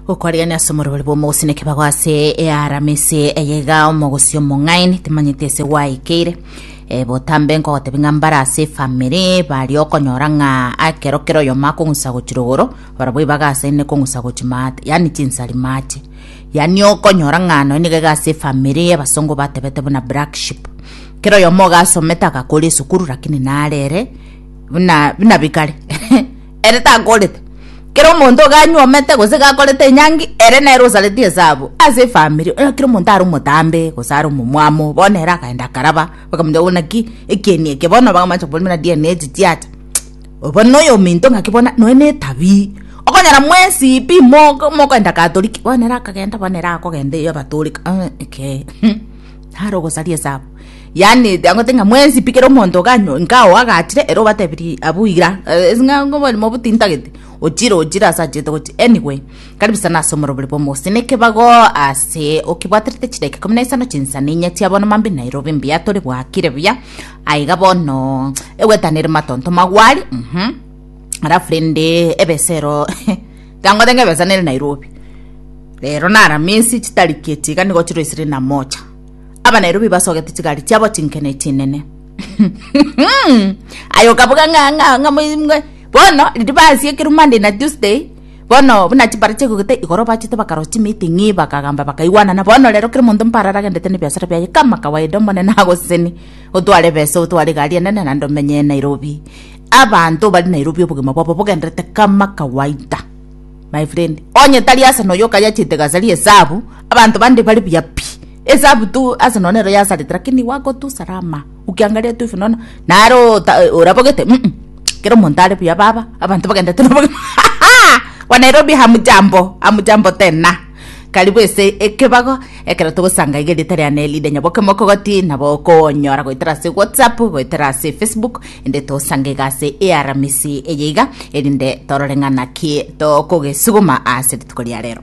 gokwarigania ase omorobori bw'omogusii naki bagwa ase earamisi eye iga omogusii omong'aini timanyete ase gwaikeire Eh, botambe nkogotebi ng'a mbare ase efamiri baria okonyora ng'a akero kero oyomo akong'usa gochia rogoro barabwo ibagasaine kong'usa gochia maate yaani chinsari maate yaani okonyora ng'a nonye niga iga ase efamiri abasongo batebete buna black sheep kera oyomo ogasomete agakora esukuru lakini naro ere buna buna bikare ere takorete. Kera omonto ganyuomete gose gakorete enyangi, ere nere osareti esabu ase efamiri. Onye kera omonto are omotambe gose are omomwamo, bono ere akaenda akaraba, bakamotebi bono naki ekieni eke bono bakamancha kobori buna DNA echi chiacha. Obo noyo ominto ng'aki bono nonya na etabi, okonyora mwesi pi mogo mokoenda Katoliki, bono ere akagenda bono ere akogenda eyo abatoreka, eh ekei. Naro ogosaria esaabo. Yaani agote ng'a mwensi pi kera omonto iga anyo- iga oagachire ere obatebirie abwo igira eh, ase ng'a oborimo obwo tintagete, ochire ochire ase achete gochia. Anyway, karibu sana ase omorobori bwa Omogusii na Ekebago ase okebwaterete chidakika ikomi na isano chinsani inye chia bono mambia Nairobi mbuya tore bwakire buya, aye iga bono egwetana ere matonto magwari, mh, alafu rende ebesero Tangote ngebesa nere Nairobi. Rero nara minsi chitari keti iga nigo chiro isire na mocha. Aba Nairobi basogete chigari chiabo chinkene chinene. Aye okabuga nga nga nga mwe bono riri basi ekiru Monday na Tuesday bono buna chibara chegogete igoro bachete bakaro chi meeting bakagamba bakaigwanana bono rero kero monto mpara aragendete ne biashara biaye kama kawaida omonene agoseseni otware besa otware gari enene na ndomenye Nairobi Abanto bari Nairobi obogima bwabo bogenderete kama kawaida. My friend, onye tari ase noyo okayachete gasaria esabu, abanto bande bari buya pi. Esabu tu ase nonya nero yasarete lakini wako tu salama. Ukiangalia tu hivi unaona nare orabogete mm kera omonto are buya baba, abanto bagenderete nobogima. Wanairobi hamjambo, hamjambo tena. Karibu ase ekebago ekero togosanga iga erieta ria Nelida Nyaboke Mokogoti nabo okonyora goetera ase WhatsApp goetera ase Facebook ende togosange iga ase earamisi eye iga erinde torore ng'a naki tokogesuguma ase rituko ria rero.